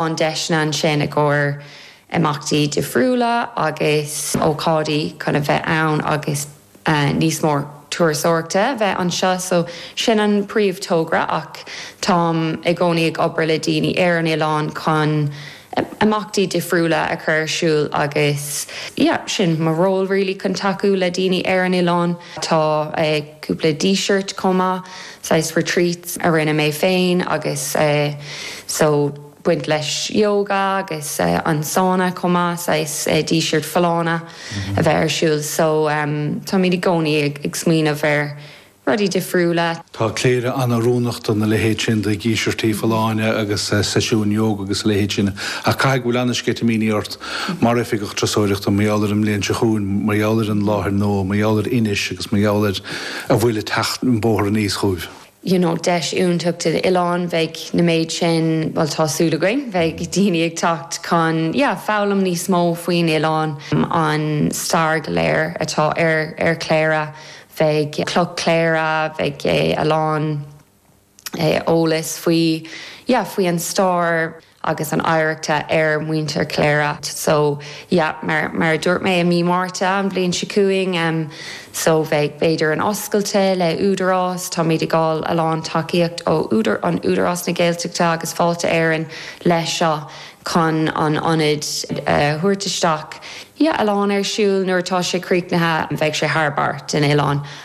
an deiseanna ansin i gcomhair imeachtaí difriúla agus ócáidí chun a bheith ann agus níos mó turasóireachta a bheith anseo so sin an príomh togra ach táim i gcónaí ag obair le daoine ar an oileán chun imeachtaí difriúla a chur ar siúl agus yeah sin mo ról really chun tacú le daoine ar an oileán tá cúpla díseart chomh maith. saghas retreats a rinne mé féin agus eh so baint leis yoga agus eh an sauna chomh maith saghas eh díseart folláine a bheith ar siúl so em táimid i gcónaí ag ag smaoineamh ar rudaí difriúla. Tá Cléire an-oiriúnach dona leithéid sin de dhíseartaí folláine agus eh seisiúin yoga agus a leithéid sin ach caithfidh go bhfuil an-sceitimíní ort mar oifigeach turasóireachta mar gheall ar an mbliain seo chugainn mar gheall ar an láthair nua mar gheall ar Inis agus mar gheall ar a bhfuil ag teacht an bóthar aníos chugaibh. you know deis iontach don oileán bheidh na méid sin bhuel tá súil againn bheidh daoine ag teacht chun yeah foghlaim níos mó faoin oileán an stair go léir atá ar ar Chléire bheidh cloch Chléire bheidh a lán eolas faoi yeah faoi an stair agus an oidhreachta ar muintir Chléire so yeah mar mar a dúirt mé i mí Márta an bhliain seo chugainn em so bheidh b'fhéidir an oscailte le Údarás táimid ag fáil a lán tacaíocht ó údar an Údarás na Gaeltachta agus Fáilte Éireann leis seo chun an ionad a thabhairt isteach yeah a lán ar siúl nuair atá sé críochnaithe bheidh sé thar barr den oileán.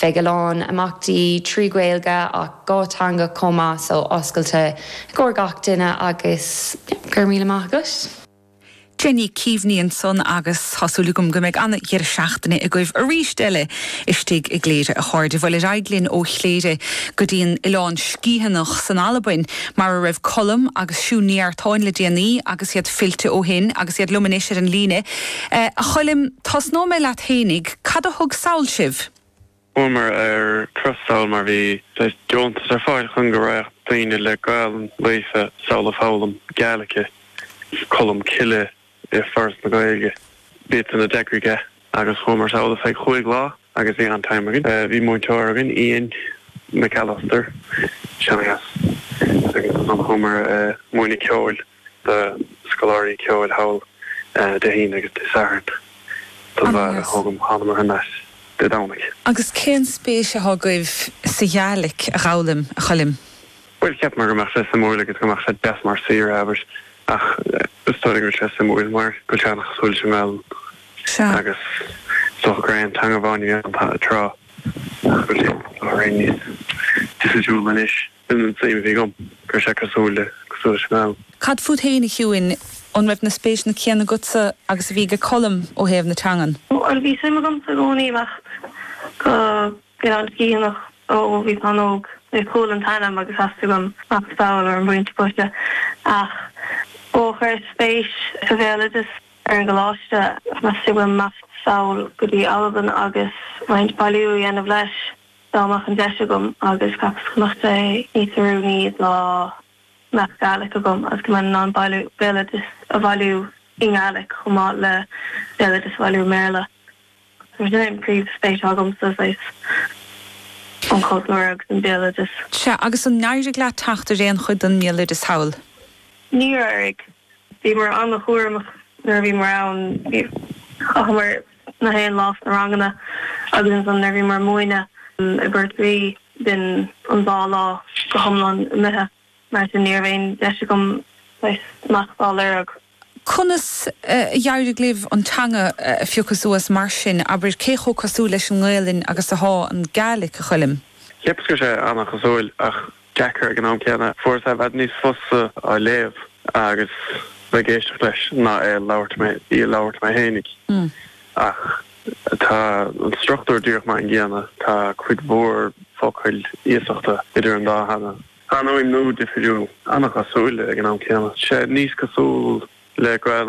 Bheidh a lán imeachtaí trí Ghaeilge ach dhá teanga chomh maith so oscailte i gcomhair gach duine agus go raibh míle maith agat. Jenny Keaveney ansan agus tá súil agam go mbeidh an-dheireadh seachtaine agaibh aríst eile istigh i gCléire a chairde. Bhuel ar aghaidh linn ó Chléire go dtí an Oileán Sgiathanach san Albain mar a raibh Colm agus Siún Ní Artáin le déanaí agus iad fillte ó shin agus iad liom anois ar an líne. A Choilm. Tosnóidh mé leat fhéinig. Cad a thug sall sibh? Chuamar ar turas sall mar bhí deontas ar fáil chun go raghadh daoine le Gaelainn líofa sall ag foghlaim Gaelic. Colm Cille i Foras na Gaeilge. B'iadsan a d'eagraigh é agus chuamar sall ar feadh chúig lá agus bhí an-time againn. Bhí múinteoir againn, Ian McAllister, seanchas, agus ansan chuamar ag múineadh ceoil. do scoláirí ceoil thall Dé hAoine agus Dé Sathairn don bhfear a thóg an thánamar thar n-ais Dé Domhnaigh. Agus cén spéis athá agaibh sa Ghaelic a fhoghlaim, a Choilm? Bhuel, cheapamar go mbeadh sé suimiúil agus go mbeadh sé deas mar saoire, abair, ach is dóigh liom go bhfuil sé suimiúil mar go bhfuil sé an-chosúil leis an nGaelainn agus is dócha gur aon teanga amháin a bhí ann tráth ach go bhfuil sé, a rá, níos difriúla anois. Sin an tsuim a bhí agam, go raibh sé cosúil le, cosúil leis an am. Cad fút fhéin, a Shiúin? An raibh na spéiseanna céanna agatsa agus a bhí ag Colm ó thaobh na teangan? Bhuel, bhí suim agamsa i gcónaí imeacht go Oileán Sgiathanach ó bhíos an-óg. Chuala an t-ainm agus theastaigh uaim imeacht sall ar an bpointe boise. Ach ó chuireas spéis sa bhéaloideas ar an gcoláiste, theastaigh uaim imeacht sall go dtí Albain agus roinnt bailiú a dhéanamh leis. Dá mbeadh an deis agam agus cheapas go mbeadh sé níos oiriúnaí dá mbeadh Gaelic agam agus go mbeinn in ann béaloideas a bhailiú i nGaelic chomh maith le béaloideas a bhailiú i mBéarla. Mar sin é an príomhspéis atá agamsa, saghas an cultúr agus an béaloideas. Sea, agus an n-éirigh leat teacht ar aon chuid den mbéaloideas thall? Níor éirigh. Bhíomar an-chúramach nuair a bhíomar ann. Chaitheamar nach aon lá sna ranganna agus ansan nuair a bhíomar múineadh i bPort Rí bhí an dá lá go h-iomlán imithe. Mar sin ní raibh aon deis agam saghas imeacht á lorg. Conas a d'éirigh libh an teanga a phiocadh suas mar sin, abair? Cé chomh cosúil leis an nGaelainn agus athá an Gaelic, a Choilm? Cheapas go raibh sé ana-chosúil ach deacair ag an am céanna. Fuaireas i bhfad níos fusa á léamh agus bheith ag éisteacht leis ná é a labhairt, í a labhairt mé fhéinig. Ach tá an struchtúr díreach mar an gcéanna. Tá cuid mhór focail iasachta idir an dá theanga. Tá an fhuaimniú difiriúil. Ana-chosúil ag an am céanna. Tá sé níos cosúil le Gaelainn